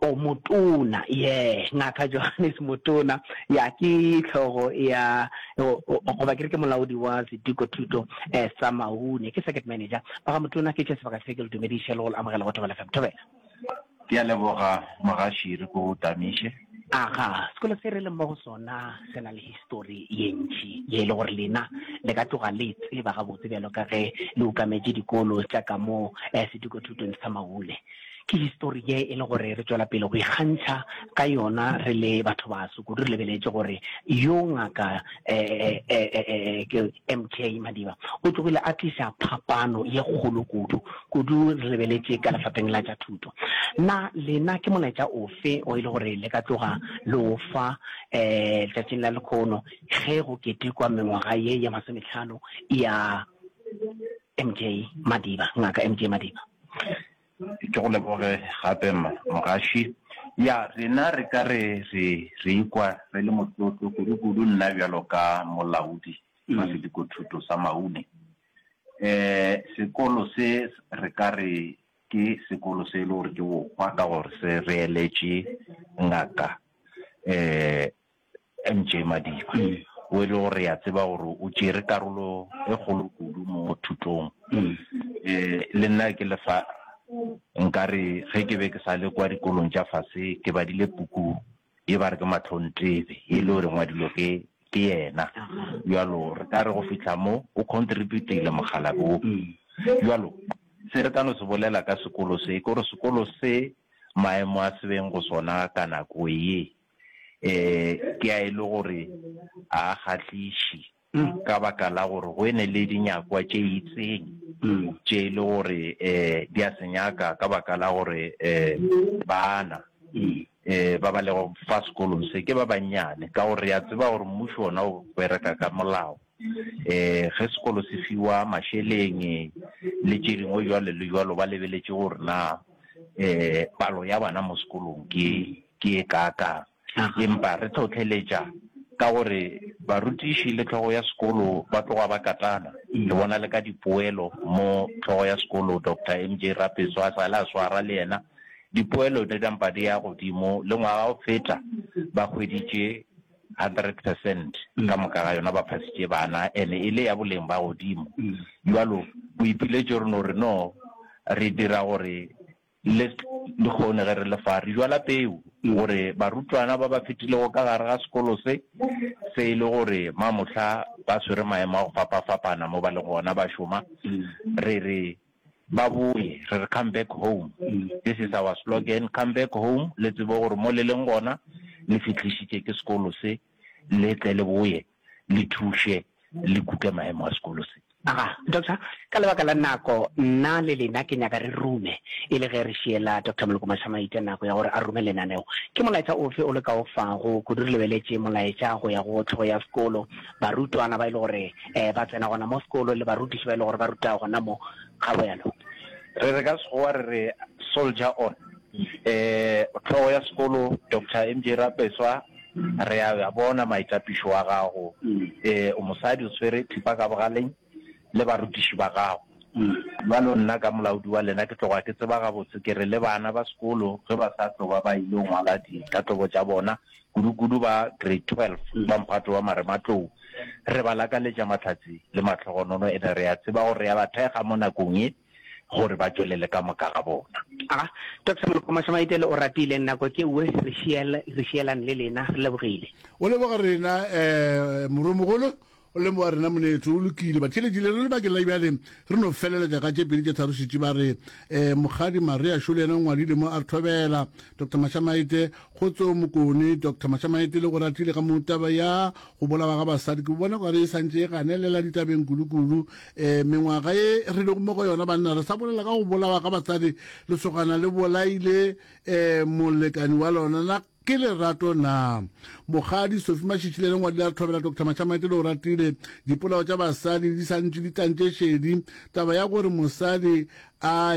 O motona, yeah, Ngaka Johannes Motona, ya ke hlogo ya goba ke re ke molaodi wa seduko thuto eh, sa Maune, ke circuit manager. Ba ga Motona ke tše sebaka se ke le dumediše le go le amogela go Thobela FM. Thobela. Ke a leboga mogaši re ko tamiše. Aga, sekolo se re leng mo go sona se na le histori ye ntšhi ye e le gore lena le ka tloga le tseba gabotse bjalo ka ge le ukametše dikolo tša ka mo eh, seduko thutong sa maule Ke histori ye e le gore re tšwela pele go ikgantšha ka yona re le batho baso, kudu re lebeletše gore yo Ngaka MK Madiba o tlogile a tliša phapano ye kgolo kudu, kudu re lebeletše ka lefapheng la tša thuto. Na lena ke molaetša ofe o e le gore le ka tloga le o fa letšatšing la lekhono ge go ketekwa mengwaga ye ye masometlhano ya MK Madiba, Ngaka MK Madiba? Ke go leboge gape Mogaši. Ya, rena re ka re re re ikwa re le motlotlo kudukudu nna bjalo ka molaodi wa sedikothuto sa Maune. Um sekolo se re ka re ke sekolo se e le gore ke bokgwa ka gore se reeletše ngaka um MJ Madiba, wo e le gore re a tseba gore o tšere karolo e kgolo kudu mo thutong. Le nna ke lefa nkare ge ke be ke sa le kwa dikolong tša fase ke badile puku ye ba re ke Matlhontebe ye e le gore e ngwadilwe ke ke yena. Bjalo re ka re go fihla mo o contributile mokgalabje wo. Bjalo se re ka no se bolela ka sekolo se ke gore sekolo se maemo a se beng go sona ka nako ye. um ke a e le gore a a kgahliši ka baka la gore go ene le dinyakwa tše itseng tše e le gore um di a se nyaka ka baka la gore um bana um ba ba lego fa sekolong se ke ba bannyane ka gore re a tseba gore mmušo ona o bereka ka molao eh ge sekolo se fiwa masheleng le tše dingwe jwalo le jwalo ba lebeletše gore na eh palo ya bana mo sekolong ke ke ye kaakang. Empa re hlohleletša ka gore barutiši le hlogo ya sekolo ba tloga ba katana. Ke bona le ka dipoelo mo hlogo ya sekolo Doctor MJ Rapeso a sa le a swara le yena, dipoelo di nampa di ya godimo le ngwaga o feta ba hweditše hundred percent ka moka ga yona, ba phasitše bana and-e e le ya boleng ba godimo. Bjalo boipiletšo re no re no re dira gore List Lehono ge re le fa, re jwala peu gore barutwana ba ba fetilego ka gare ga sekolo se, se e le gore ma mohla ba swere maemo a go fapafapana mo ba le gona ba šoma, re re ba boye, re re come back home. This is our slogan, come back home, le tsebe gore mo le leng gona le fihlišitše ke sekolo se. le tle le boye le thuše le kute maemo a sekolo se. Aga, Doctor, ka lebaka la nako, nna le lena ke nyaka re rume, e le ge re šiela Doctor Moloko Mashamaite nako ya gore a rume lenaneo. Ke molaetša ofe o le ka o fago, kudu re lebeletše molaetša go ya go hlogo ya sekolo, barutwana ba e le gore um ba tsena gona mo sekolo le barutiši ba e le gore ba ruta gona mo, ga bjalo? Re re ka Sekgowa re re soldier on. Um hlogo ya sekolo, Doctor MJ Rapeswa. Re a a bona maitapišo wa gago. Ee, o mosadi, o tshwere thipa ka bogaleng le barutiši ba gago. Bjalo nna ka molaodi wa lena ke tloga ke tseba gabotse, ke re, le bana ba sekolo ge ba sa tlo ba ba ile ngwala ditatobo tša bona, kudukudu ba Grade Twelve ba mphato wa marematlou, re ba lakaletša mahlatse le mahlogonono. Ene re a tseba gore re a ba thekga mo nakong ye. gore ba tšwelele ka moka ga bona. A Doctor Molokomasamaitele o ratile nako ke uwe re šiel re šielane le lena re lebogile. O leboga rena eh morwemogolo o lemoga rena monetho o lokile batšheletši le re lebakeng la bjale re no feleletša ka tše pedi tše tharo šetši ba re eh mokgadi marea šo le yena o ngwadile mo a re thobela Doctor Mashamaite kgotsong mokone Doctor Mashamaite le go ratile ka mo taba ya Go bolawa ga basadi ke bona okare e santše e ganelela ditabeng kudu-kudu. E, mengwaga ye re lego mo go yona banna re sa bolela ka go bolawa ga basadi. Lesogana le bolaile e, molekani wa lona. Na ke lerato na? Mokgadi Sophie Mashitshile le ngwadi la re thobela Doctor Mashamaite le Oratile, dipolao tša basadi di santše di tlantše šedi taba ya gore mosadi a